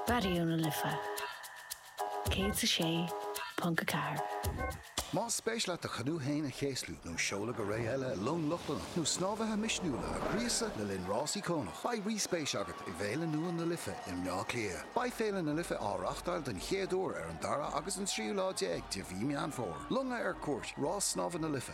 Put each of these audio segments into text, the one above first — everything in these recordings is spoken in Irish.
Raidió na Life 106.4. Más spéis leat do chanú féin a chéaslú nó seoladh go ré eile i long Lochlannach nó snámhaithe misniúla a ghríosadh le linn rás íocónach, beidh ríspéis agat i bhFéile nua na Life i mBleá Cliath. Beidh Féile na Life á reáchtáil den chéad uair ar an dara agus an tríú lá déag de mhí Meán Fómhair. Longa ar cuairt, Rás Snámha na Life.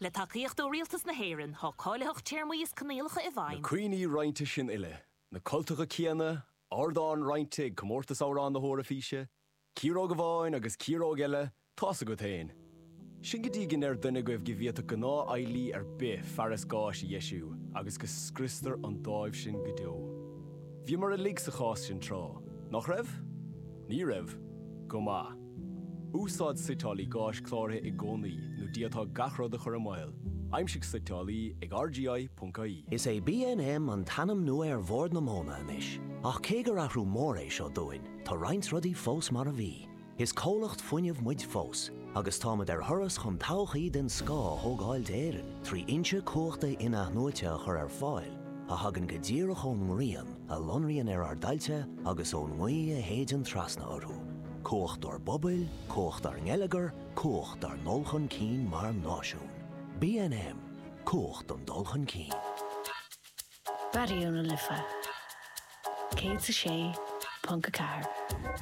Le tacaíocht ó Rialtas na hÉireann, tá cáilitheacht, téarmaí is coinníollacha i bhfeidhm. Na cuimhní roinnte sin uile, na cultacha céanna, ardán roinnte ag Comórtas Amhrán na hEoraifíse, ciaróg amháin agus ciaróg eile, tá's agat féin. Sin go dtí go ndeir duine agaibh go bhféadfadh gnáth-handyman ar bith fearas gáis a dheisiú agus go scriostar an dáimh sin go deo. Bhíomar uilig sa chás sin tráth, nach raibh? Ní raibh? Go maith. Úsáid suiteálaí gáis cláraithe i gcónaí nó d'fhéadfá gach rud a chur i mbaol, aimsigh suiteálaí ag rgi.ie. Is é BNM an t-ainm nua ar Bhord na Móna anois, ach cé gur athrú mór é seo dúinn, tá roinnt rudaí fós mar a bhí. Is comhlacht fuinnimh muid fós, agus táimid ar thuras chun todhchaí den scoth a thógáil d'Éirinn trí fhoinse cumhachta in-athnuaite a chur ar fáil a thagann go díreach ón ngrian a lonraíonn ar ár dtailte agus ón ngaoth a shéideann trasna orthu. Cumhacht dár bpobail, cumhacht dár ngeilleagar, cumhacht dár ndul chun cinn mar náisiún. BNM, Cumhacht don dul chun cinn. Raidió na Life 106.4.